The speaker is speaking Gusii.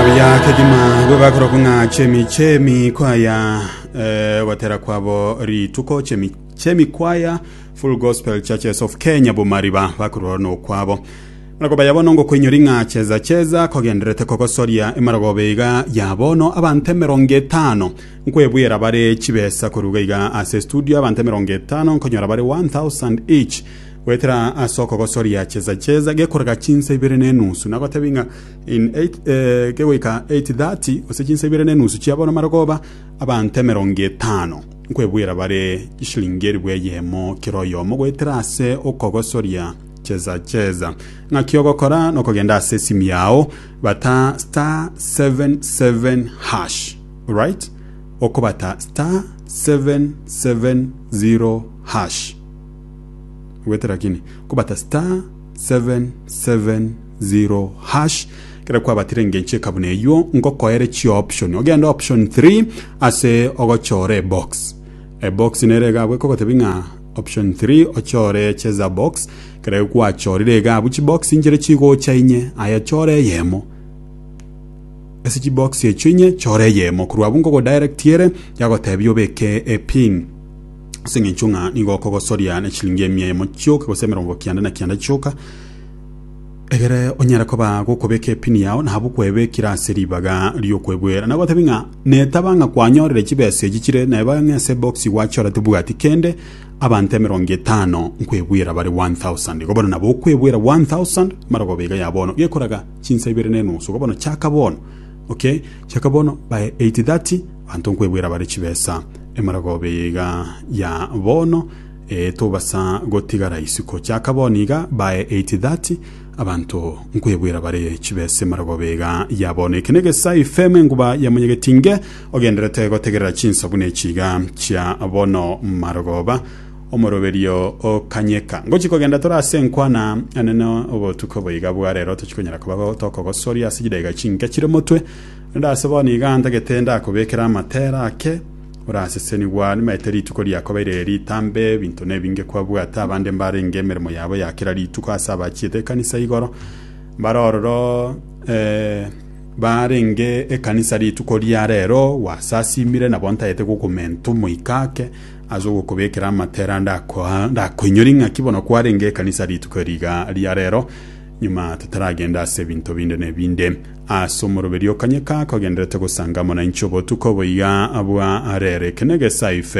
Buya kegima bwe bakorokwa ng'a chemi chemi kwaya eh, gotera kwabo rituko chemi chemi kwaya Full Gospel Churches of Kenya Bumariba bakorwa no kwabo Marako baya bono ngokoinyori ng'a cheza cheza kogenderete kogosoria emarogobe iga ya bono abante emerongo etano nkwebwera bare chibesa koruga iga ase studio abante emerongo etano nkonyora bare 1000 each gwetera ase okogosoria cheza cheza gekorega chinsa ibere na enusu nagotebi ng'a kegoika 8:30, gose chinsa ibere ne enusu chia bono mare koba abanto emerongo etano, nkwebwera bare chisiringi eribu eyemo kera oyomo, goetera ase okogosoria cheza cheza. Ng'aki ogokora nokogenda ase esimu yao, bata *77#, right? Okobata *770#, goetera kini? Okobata *77#. Zero hash kero kwabatire engencho eka buna eywo ngokoere chi option ogende option 3 ase ogochora ebox ebox nere iga abwo ekogotebi ng'a option 3 ochore cheza box kere gwachorire iga abwo chibox inchire chigocha inye aya chora eyemo ase chibox echio inye chora eyemo korwa abwo ngogodirect ere yagotebi obeke epin ase eng'encho ng'a nigo okogosoria nechiringi emia emo chioka gose emerongo kianda na kianda chioka Egere onyare koba gokobeka epini yao nabu kwebekire ase ribaga ri'okwegwera. Nagotebi ng'a netaba ng'a kwanyorire chibesa echi chire neba ng'a ase box gwachora tibwati kende abanto emerongo etano nkwebwera bare 1000. Igo bono nabo okwebwera 1000 mara okoba iga ya bono gekoraga chinsa ibere na enusu. Igo bono chaka bono. Okay? Chaka bono by 8:30 abanto nkwebwera bare chibesa emara okoba iga ya bono. Ee, tobasa gotigara isiko chaka bono iga bae 8:30 abanto nkwebwera bare chibese maragobe iga ya bono eke negesaa ifm enguba ya monyegetinge ogenderete gotegerera chinsabuna echi iga chia bono marogoba omoroberio okanyeka ngochi kogenda tore ase enkwana enene obotuko boiga bwa rero tochikonyara koba tokogosoria ase chidaika chinke chire motwe rende ase bono iga ntagete ndakobekere amatera ake Orasesenigwe aa nimaete rituko riakobeire ritambe, ebinto nebinge kwabwate, abande mbarenge emeremo yabo ya kera rituko ase abachiete ekanisa igoro, mbare ororo eh, barenge ekanisa rituko ria rero, gwasasimire nabo ntagete gokomenta omoika ake ase ogokobekera amatera, ndakoa- ndakoinyori ng'aki bono kwarenge ekanisa rituko eri iga ria rero, Nyuma totaragenda ase ebinto binde nebinde, ase omoroberio okanyeka kogenderete gosanga omonainchi obotuko boiga bwa Arere, Kenegesa, Ife.